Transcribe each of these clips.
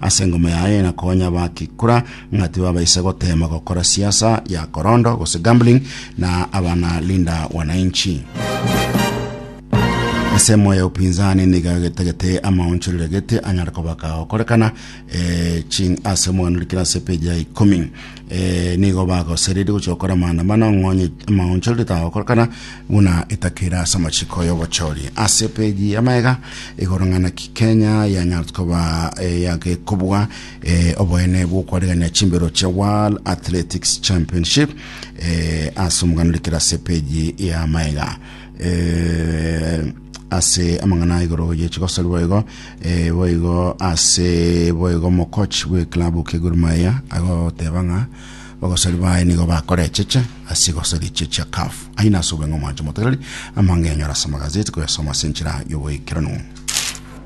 Ase engoma yaye na konya bakikura ng'a tibabaisa gotema gokora siasa ya korondo gose gambling na abana linda wananchi. Ensemo ya upinzani niga getagete amaonchorero gete anyare kobaka gokorekana eh, ching ase mwanurikira ase page ya ikomi. eh, nigo bagosereria gochia gokora maandamano ang'onye amaonchorero tagokorekana buna etakera ase amachiko y'obochori ase peji ya maega igoro ng'ana ki kenya yanyarote koba eh, yagekobwa eh, oboene bw'okwaregania chimbero chia world athletics championship eh, ase omogano rikera ase peji ya maega eh, ase amang'ana igoro ye chigosori boigo eh, boigo ase boigo mokoch bwe klabu ke Gor Mahia agoteba ng'a bagosori baye nigo bakorecheche ase igosori eche chia CAF aye nase obeng'o mwanche motegereri amangenyo arase amagazeti koyasoma ase enchera y'oboikeranu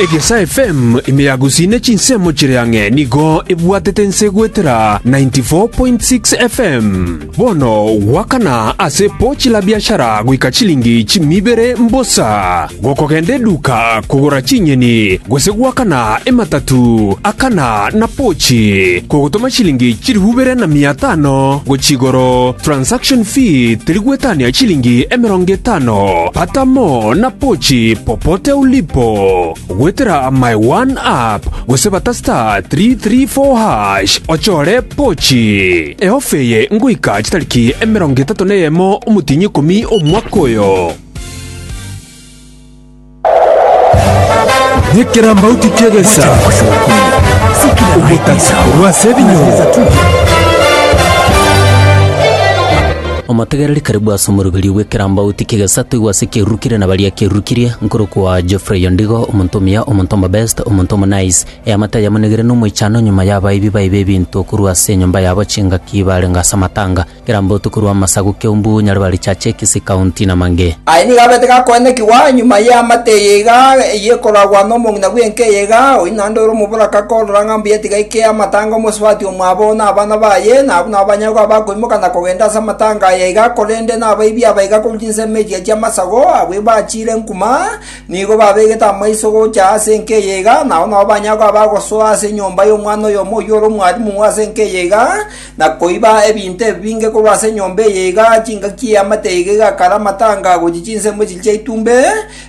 Egesa FM ime ya Gusii ne chinsemo chire ang'e nigo ebwatete ense goetera 94.6 FM. Bono gwakana ase pochi la biashara goika chilingi chimi ibere mbosa. Gokogenda eduka kogora chinyeni gose gwakana ematatu akana na pochi kogotoma chilingi chilifu ibere na mia tano gochia igoro. Transaction fee teri gwetania chilingi emerongo etano. Atamo na pochi popote ulipo, goetera my one app gose bata star three three four hash ochore pochi. Eofa eye ngoika chitariki emerongo etato na eyemo omotienyi ikomi omwaka oyo. Nekerambauti ki'egesa, ogotaka korwa ase ebinyoro. Omotegereri karibu ase omoroberio bw'ekerambauti ki'egesatigwa ase ekiarurukirie na baria kiarurukirie, nkorokwa Geoffrey Ondigo, omonto omuya, omonto omobest, omonto omonice. Eamate ayamonigire n'omoichano nyuma y'abaibi baibe ebinto korwa ase enyomba yabo chingaki barenge ase amatanga, ekerambauti korwa amasagu Keumbu, Nyaribari Church, Kisii County na mangĩ. Aye nigo abete gakoenekigwa nyuma y'eamate eye iga, eyio ekoragwa nomong'ina bw'enka eye iga, oyio naende ore omoboraka korora ng'a mbuya tiga eke amatanga omosubati omwabo na abana baye, na abwo nabo banyagwe abakoirwa. Mogana kogenda ase amatanga aya iga, korende nabaibi aba iga korwa chinsemo echi chi'amasago, abwo bachiire nkuma, nigo babegete amaiso gocha ase enka eye iga, na ao nao banyare koba bagosoa ase enyomba y'omwana oyomo oyio ore omwarimu ase enka eye iga, na koiba ebinto ebi binge korwa ase enyomba eye iga, chingaki y'eamate iga egakara amatanga gochia chinsemo echi chia itumbe,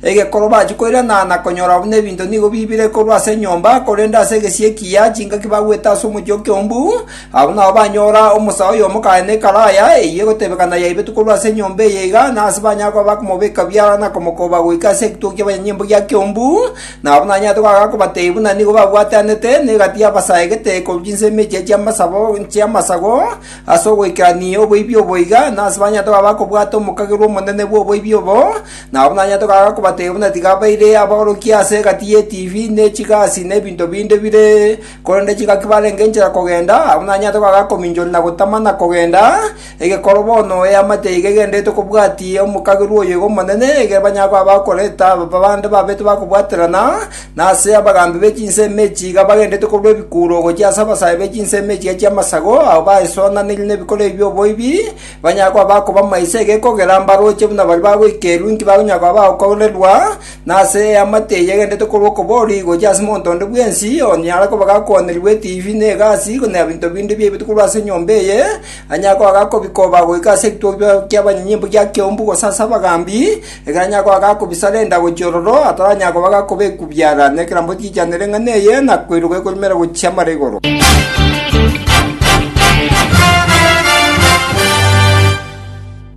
egekoro bachia koirana na konyora buna ebinto nigo bibire korwa ase enyomba, korende ase egesie ekiya chingaki bagwete ase omochie o Kiombu, Abwo nabo banyora omosaa oyomo kaane ekaraya eyio egotebekana yaibetwe korwa ase enyomba eye iga, na ase banyare koba bakomobeka biara na komokoba goika ase egituko ki'abanyanyimbo gia Kiombu, nabo nanyarete koaga kobatebia buna nigo babwatanete, na egati yabasaegete korwa chinsemo echiya chi'amasabo chi'amasago ase ogoikerania oboibi obo iga, na ase banyarete koba bakobwata omokagerwa omonene bw'oboibi obo, nabo nanyarete koaga kobatebia buna tiga baire abaorokia ase egati y'etibi, ne chigasi, na ebinto binde bire Korende chingaki barenge inchera kogenda, abwo nanyarete goaka akominchoria na gotama na kogenda, egekoro bono eamate iga egendererete kobwati omokagerwa oyo iga omonene, ekero banyare koba bakoreta ababa bande babete bakobwaterana, na ase abagambi be chinsemo echi iga bagendererete korwa ebikuro gochia ase abasae be chinsemo echiria chi'amasago, abwo baesonanirie nebikoro ebi by'oboibi, banyare koba bakoba maiso egekogera mbarooche buna baria bagoikerwa inki bakonyara koba bagokoorerwa, na ase eamate eyegenderete korwa okoborio gochia ase monto onde bwensi onyare koba gakwanerigwe etiifi, na egasi, na ebinto binde biaibete korwa ase enyomba eye, anyare koba gakobikoba goika ase ekitukia ki'abanyinyi imbe gia keumbu gose ase abagambi, ekero anyare koba gakobisarenda gochia ororo, ataranyara koba gakobekwubiara nekerambe ochiichanere eng'ana eye, na koiroka ekorumera gochia mara igoro.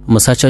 Omosacha oyo